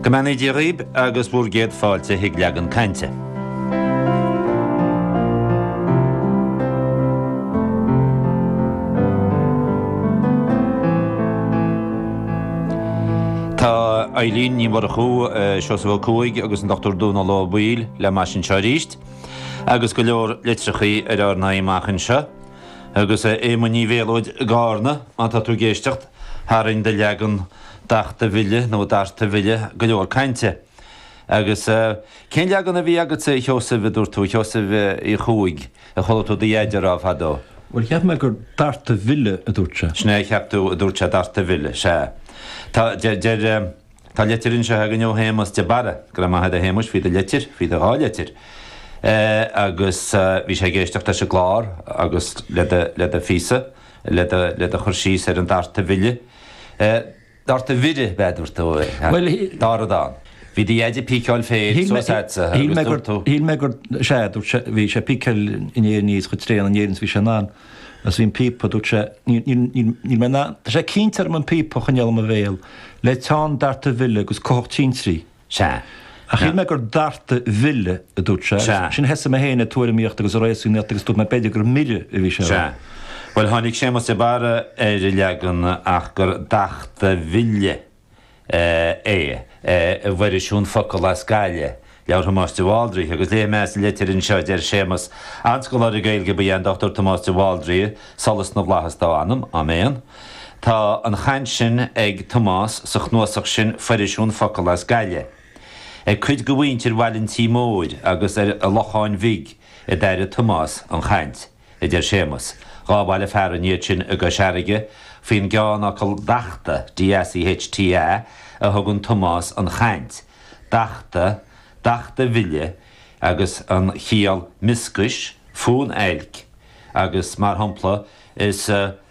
Go mbeannaí Dia dhaoib agus bhur gcéad fáilte chuig leagan cainte. Tá Eibhlín Ní Mhurchú, Seosamh Ó Cuaig agus an Dr Dónal Ó Baoill le m'ais anseo arís, agus go leor litreachaí ar ár n-aghaidh amach anseo, agus a Éamoinn Uí Mhéalóid i gCarna, má tá tú ag éisteacht. Tharraing do leagan dachta mhille, nó darta mhille, go leor cainte. Agus eh, cén leagan a bhí agatsa, a Sheosaimh, a dúirt tú, a Sheosaimh Uí Chuaig, a chuala tú do Dheaide a rá fadó? Bhuel, cheap mé gur darta mhille a dúirt sé. Sin é a cheap tú, a dúirt sé, darta mhille, sea. Tá, deir, tá litir anseo againn ó Shéamus de Barra, go raibh maith agat, a Shéamais, faoi do litir, faoi do dhá litir. Eh, agus eh, bhí sé ag éisteacht leis an gclár agus le do, le do phíosa. le do chur síos ar an darta mhille, darta mhire ab ea a dúirt tú, dar a dan. Bhí do dheaide ag píceáil féir suas leatsa agus dúirt tú. Shíl mé gur, sea, a dúirt sé, bhí sé ag píceáil an fhéir aníos chomh tréan in Éirinn is a bhí sé in ann agus bhí an píopa, dúirt sé, níl mé in ann, tá sé ag cinnt orm an píopa a choinneáil i mo bhéal le teann darta mhille agus cuthach tintrí. Sea. Ach shíl mé gur darta mhille, a dúirt sé, agus ansin thosaigh mé féin ag tuairimíocht agus ag réasúnaíocht agus dúirt mé b'fhéidir gur mire a bhí sé a rá. Sea. Bhuel, tháinig Séamas de Barra ar an leagan ach gur dachta mhille é, i bhFoirisiún Focal as Gaillimh, leabhar Thomáis de Bhaldraithe, agus léifidh mé as an litir anseo, deir Séamas, An-scoláire Gaeilge ba ea an Dr. Tomás de Bhaldraithe, solas na bhFlaitheas dá anam, Áiméan. Tá an chaint sin ag Tomás sa chnuasach sin Foirisiún Focal as Gaillimh. Ag cuid de mhuintir Bhaile an Tí Mhóir agus an Locháin Bhig a d'airigh Tomás an chaint, a deir Séamas. Dhá bhaile fearainn iad sin i gCois Fharraige faoin gceannfhocal 'dachta', DACHTA, a thugann Tomás an chaint, 'dachta', 'dachta mhille' agus an chiall 'mioscais, fonn oilc' agus, mar shampla, is.